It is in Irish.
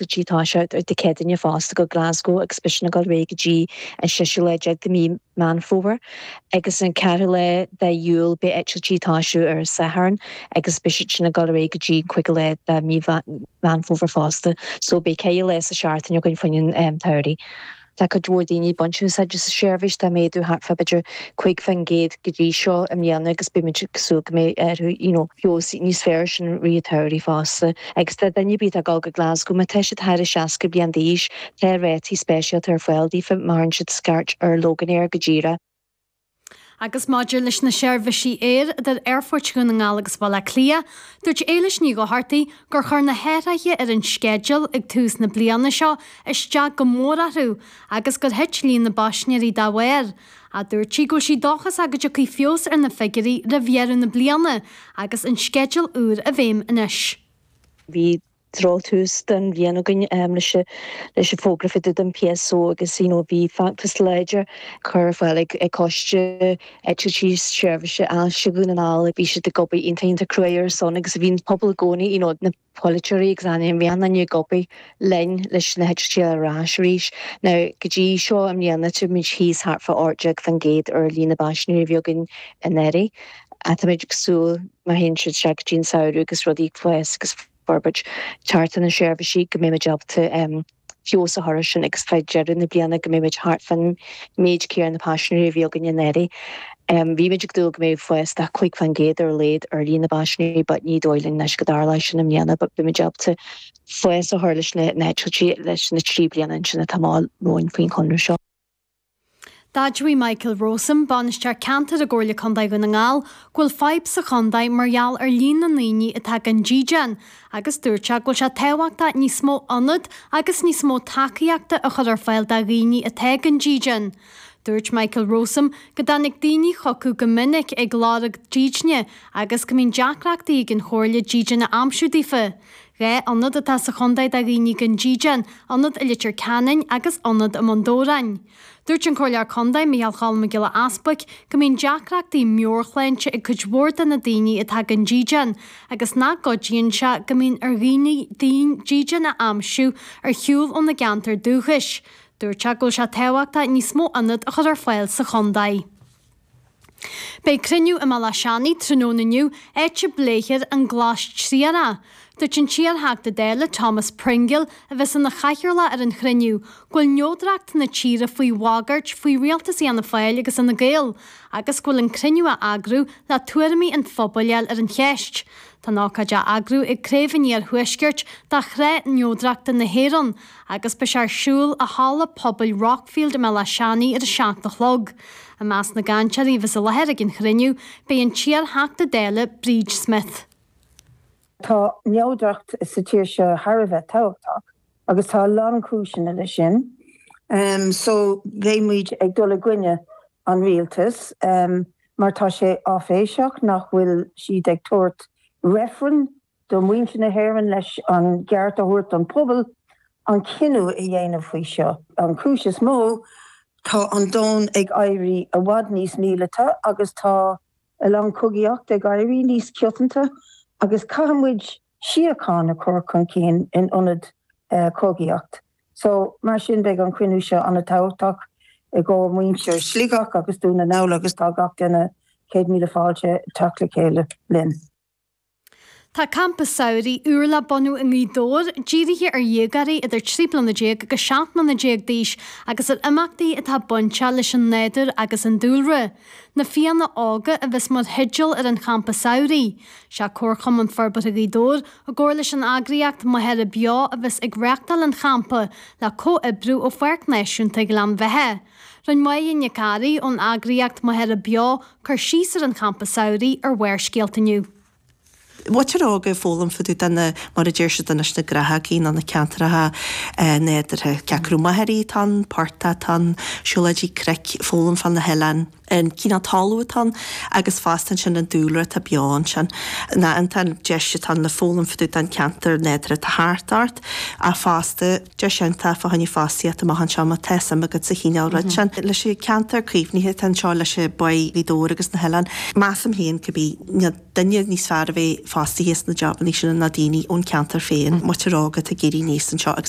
go dtí tá sé achan Chéadaoin fosta go Glasgow agus beidh sin ag dul ar aghaidh go dtí an séú lá déag de mhí Meán Fómhair agus an ceathrú lá de Iúil beidh eitiltí ag toiseacht ar an Satharn agus beidh sin ag dul ar aghaidh go dtí an cúigiú lá de mhí Mheán Fómhair fosta so beidh ceithre lá sa tseachtain againn fá choinne an tsamhraidh. Tá cuid mhór daoine ag baint úsáid as an seirbhís, tá méadú thart fá b'fhéidir 50% go dtí seo i mbliana agus beimid ag súil go mbeidh you know feabhas níos fearr ar sin i rith an tsamhraidh fosta. Agus tá duine ar bith atá ag dul go Glasgow, má tá siad thar a 60 bliain d'aois, tá rátaí speisialta ar fáil daofa má chuireann siad scairt ar Loganair go díreach. Agus maidir leis na seirbhisí aeir idir Aerfort Dhún na nGall agus Baile Átha Cliath, dúirt Éilis Ní Dhochartaigh gur chuir na hathraithe ar an sceideal ag tús na bliana seo isteach go mór orthu agus gur thit líon na bpaisinéirí dá bharr. Dúirt sí go bhfuil sí dóchasach go dtiocfaidh feabhas ar na figiúirí roimh dheireadh na bliana agus an sceideal úr i bhfeidhm anois. Bhí Drochthús den bhliain againn leis an bhfógra fá dtaobh den PSO agus bhí feachtas láidir curtha ar fáil ag Coiste Eitiltí Seirbhíse Ailse Dhún na nGall. Bhí siad ag obair iontach iontach cruaidh ar a son agus bhí an pobal i gcónaí, na polaiteoirí agus na meáin ag obair linn leis na heitiltí a fháil ar ais arís. Now go dtí seo i mbliana táimid thíos thart fá 18% ar líon na bpaisinéirí a bhí againn anuraidh. Ach táimid ag súil, má théann sé seo go dtí an samhradh agus rudaí ag fás agus forbairt thart ar na seirbhísí, go mbeimid ábalta feabhas a chur air sin agus fá dheireadh na bliana go mbeimid thart fán méid céanna paisinéirí a bhí againn anuraidh. Bhí muid ag dúil go mbeadh fás de 5 fán gcéad ar a laghad ar líon na bpaisinéirí but ní dóigh linn anois go dtarlóidh sin i mbliana but beimid ábalta fás a chur leis na heitiltí leis na trí bliana ansin atá romhainn faoin chonradh seo. D'admhaigh Michael Rowsome, Bainisteoir Ceantair i gComhairle Contae Dhún na nGall, go bhfuil fadhb sa chontae mar gheall ar líon na ndaoine atá gan dídean agus dúirt sé go bhfuil sé tábhachtach níos mó ionad agus níos mó tacaíochta a chur ar fáil do dhaoine atá gan dídean. Dúirt Michael Rowsome go dtagann daoine chucu go minic ag lorg dídine agus go mbíonn deacrachtaí ag an Chomhairle dídean a aimsiú daofa. Dhá ionad atá sa chontae do dhaoine gan dídean, ionad i Leitir Ceanainn agus ionad i mBun Dobhráin. Dúirt an Comhairleoir Contae, Micheál Cholm Mac Giolla Easbuic, go mbíonn deacrachtaí meabhairshláinte ag cuid mhór de na daoine atá gan dídean agus nach gcuidíonn sé go mbíonn ar dhaoine dídean a aimsiú ar shiúl óna gceantar dúchais. Dúirt sé go bhfuil sé tábhachtach níos mó ionad a chur ar fáil sa chontae. Beidh cruinniú i mBéal Átha Seanaidh tráthnóna inniu, áit a bpléifear an glas triarach. Dúirt an t-iarTheachta Dála, Thomas Pringle, a bheas ina chathaoirleach ar an chruinniú, go bhfuil neodracht na tíre faoi bhagairt faoi rialtas Fhianna Fáil agus Fhine Gael agus go bhfuil an cruinniú á eagrú le tuairimí an phobail a fháil ar an cheist. Tá an ócáid á eagrú ag Craobh an Iarthuaiscirt de Shraith Neodrachta na hÉireann, agus beidh sé ar siúl i Halla Pobail Rockfield i mBéal Átha Seanaidh ar a seacht a chlog. I measc na gcainteoirí a bheas i láthair ag an chruinniú, beidh an t-iarTheachta Dála, Bríd Smith. Tá neodracht sa tír seo thar a bheith tábhachtach agus tá a lán cúiseanna leis sin so bheidh muid ag dul i gcoinne an Rialtas mar tá sé áiféiseach nach bhfuil siad ag tabhairt reifreann do mhuintir na hÉireann leis an gceart a thabhairt don phobal an cinneadh a dhéanamh faoi seo. An chúis is mó, tá an domhan ag éirí i bhfad níos míleata agus tá a lán cogaíocht ag éirí níos coitianta agus caithfidh muid síocháin a chur chun cinn in ionad cogaíocht. So, mar sin beidh an cruinniú seo an-tábhachtach i gcomhair muintir Sligeach agus Dún na nGall agus tá gach duine, céad míle fáilte teacht le chéile linn. Tá Campa Samhraidh úr le bunú i nGaoth Dobhair, dírithe ar dhéagóirí idir 13 bliana agus 17 mbliana d'aois agus ar imeachtaí atá bainteach leis an nádúr agus an dúlra. Na Fianna Óga a bheas mar theideal ar an Champa Samhraidh. Sé Comharchumann Forbartha Ghaoth Dobhair, i gcomhar leis an eagraíocht Machaire Beo a bheas ag reachtáil an Champa, le comhoibriú ó Pháirc Náisiúnta Ghleann Bheatha. Rinne Maighe Nic Gharraí ón eagraíocht Machaire Beo cur síos ar an champa samhraidh ar Bharrscéalta inniu. Muintir óga ag foghlaim fá dtaobh de na, mar a deir siad leis, na gnáthógaí nó na ceantracha nádúrtha. Cé acu machairí atá ann, portaigh atá ann, siúlóidí cnoic, foghlaim fá na hoileáin. an cineál talún atá ann agus fosta ansin an dúlra atá beo ansin. Nó iontach an deis atá ann le foghlaim fá dtaobh den ceantar nádúrtha atá thart ort ach fosta, deis iontach fá choinne fostaíocht amach anseo má tá suim agat sa chineál rud sin. Leis an ceantar caomhnaithe atá anseo leis Bá Ghaoth Dobhair agus na hoileáin, measaim féin cha bíonn duine níos fearr a bheith fostaithe sna jabannaí sin ná daoine ón ceantar féin. Muintir óga atá ag éirí aníos anseo agus.